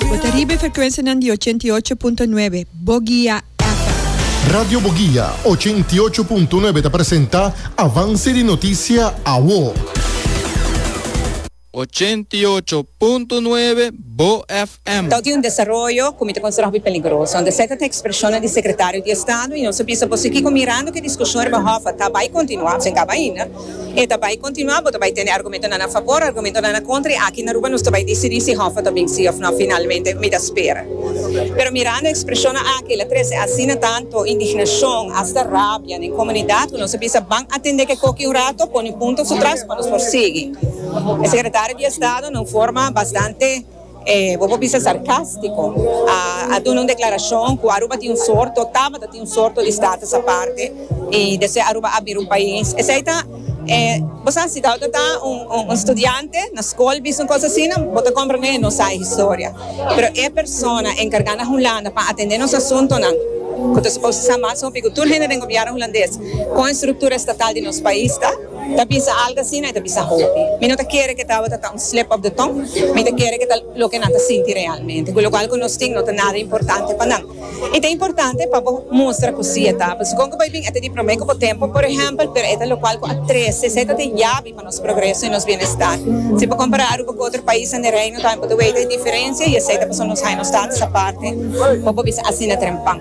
Bo ta riba e frekuensianan di ochenta i ocho punto nuebe Bogia FM. Radio Bogia ochenta i ocho punto nuebe ta presenta Avance di Noticia Awo. Ochenta i ocho punto nuebe Bo FM. Toti un desaroyo ku mi ta konsidera hopi peligroso. Anto esei ta tin ekspreshonnan di sekretario di estado i nos a bisa, Bo sigi ku mirando ku e diskushon riba Hoffa ta bai kontinuá, pues e kaba ainda. E ta bai kontinuá, bo ta bai tende argumentonan a fabor, argumentonan a kontra i aki na Aruba nos ta bai disidí si Hoffa ta bin sí òf nò finalmente. Mi ta spera. Pero mirando e ekspreshonnan aki el a trese asina tantu indignashon, asta rabia den komunidat ku nos a bisa ban atendé ke koki un rato, pone punto su tras pa nos por sigui. E sekretario di Estado na un forma bastante. Bo por bisa sarcástico. A duna un declaracion cu Aruba tin un soort, o tabata tin un soort di status aparte, y despues Aruba a bira un pais. Esey ta, bo sa, si Douda ta un studiante na scol bisa un cosa asina, bo ta comprende que no sa e historia. Pero e persona encarga na Hulanda pa atende nos asuntonan, cu ta suposo sa mas hopi cu tur hende den gobierno Hulandes, con e structura estatal di nos pais ta. Ta bisa algo asina e ta bisa hopi. Mi no ta kere ku e tabata ta un slip of the tongue, mi ta kere ku ta loke nan ta sinti realmente, ku lokual ku nos tin no ta nada importante pa nan. I ta importante pa bo mustra ku si e ta, pasobra kon ku bai bin e ta di promé ku bo tempu, por ehèmpel, pero e ta lokual ku a trese, esei ta den yabi pa nos progreso i nos bienestar. Si bo kompará Aruba ku otro paisnan di Reino tambe bo ta wega e diferensia i esei ta pasobra nos haña nos tabata sa parte, por bo bisa asina tren pan.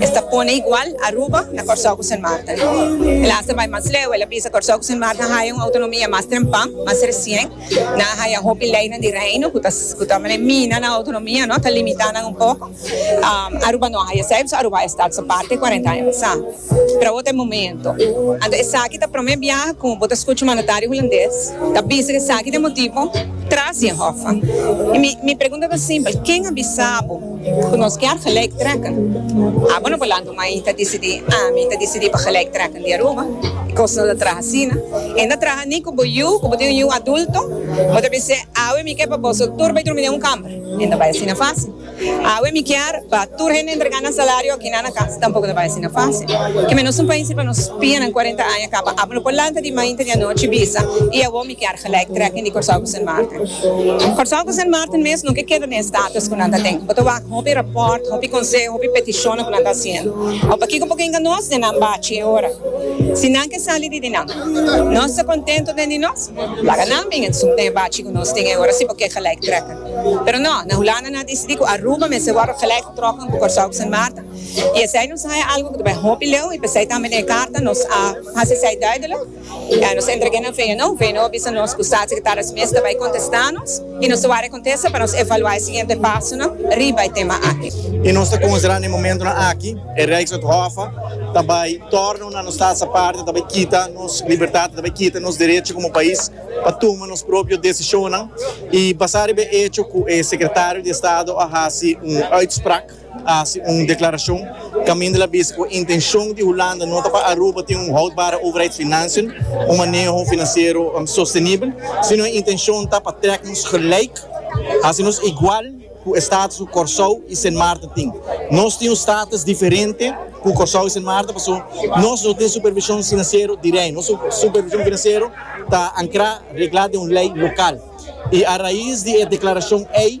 Es ta pone igual Aruba na Kòrsou ku Sint Maarten. El a hasta bai mas leu, el a bisa, Kòrsou ku Sint Maarten a haya un outonomia mas trempan, mas resien. Nan a haya hopi leinan di reino ku ta ku ta mane mina nan outonomia, no, ta limitá nan un poko. Aruba no a haya esei, pasobra Aruba a estat so parti kuarenta aña pasá. Pero awor ta e momento. Anto esaki ta promé biaha ku bo ta skucha un mandatario hulandes ta bisa ku esaki ta e motibu tras di e hòf. I mi mi pregunta ta simpel, ken a bisa bo? Cu nos kier gelijk trekken. Abo no por lanta un main ta dicidi, ah, mi ta dicidi pa gelijk trekken di Aruba. E cos no ta traha asina. E no traha ni cu bo yu, cu bo tin un yu adulto, bo ta bis'e, awe mi kier pa boso tur bay drumi den un camber. E no bay asina facil. Awe mi kier pa tur hende entrega nan salario akinan na cas. Tampoco no bay asina facil. Keme nos un país riba nos pianan cuarenta aña caba. Abo no por lanta di main ta di anochi bisa, y awor mi. Kier gelijk trekking di Kòrsou ku Sint Maarten. Kòrsou ku Sint Maarten mes nunke keda den e status ku nan ta den. Bo ta wak hopi rapòrt, hopi konseho, hopi petishonnan ku nan ta hasiendo. Awe pa kiko bo ke inga nos den nan bachi e ora? Si nan ke sali di di nan, nos ta kontentu den di nos. Laga nan bin esump den e bachi ku nos tin e ora si bo ke gelijk trekking. Pero no, na Hulanda nan a disidí ku Aruba mester wòrdu gelijk getrokken ku Kòrsou ku Sint Maarten. I esei nos haya algu ku ta bai hopi leu i p'esei tambe den e karta nos a hasi esei duidelik. Ya nos entregu'é na Veno, Veno a bisa nos ku statssekretáris mes ta bai kontestá nos i nos ta wak e kontesta pa nos evaluá e siguiente pasonan riba e tema aki. I nos ta konsiderá na e momentunan aki e Rijkswet Hof ta bai tòrna una nos staatsaparten ta bai kita nos libertat, ta bai kita nos derecho komo pais pa tuma nos propio desishonnan i basá riba e echo ku e Sekretario di Estado a hasi un uitspraak. hasi un deklarashon kaminda el a bisa ku e intenshon di Hulanda no ta pa Aruba tin un houdbare overheidsfinansiën, un maneho finansiero sostenibel, sino e intenshon ta pa trek nos gelijk, hasi nos igual ku e status ku Kòrsou i Sint Maarten tin. Nos tin un status diferente ku Kòrsou i Sint Maarten paso nos no tin supervishon finansiero di rei. Nos supervishon finansiero ta ankrá, reglá den un lei lokal. I a rais di e deklarashon ei.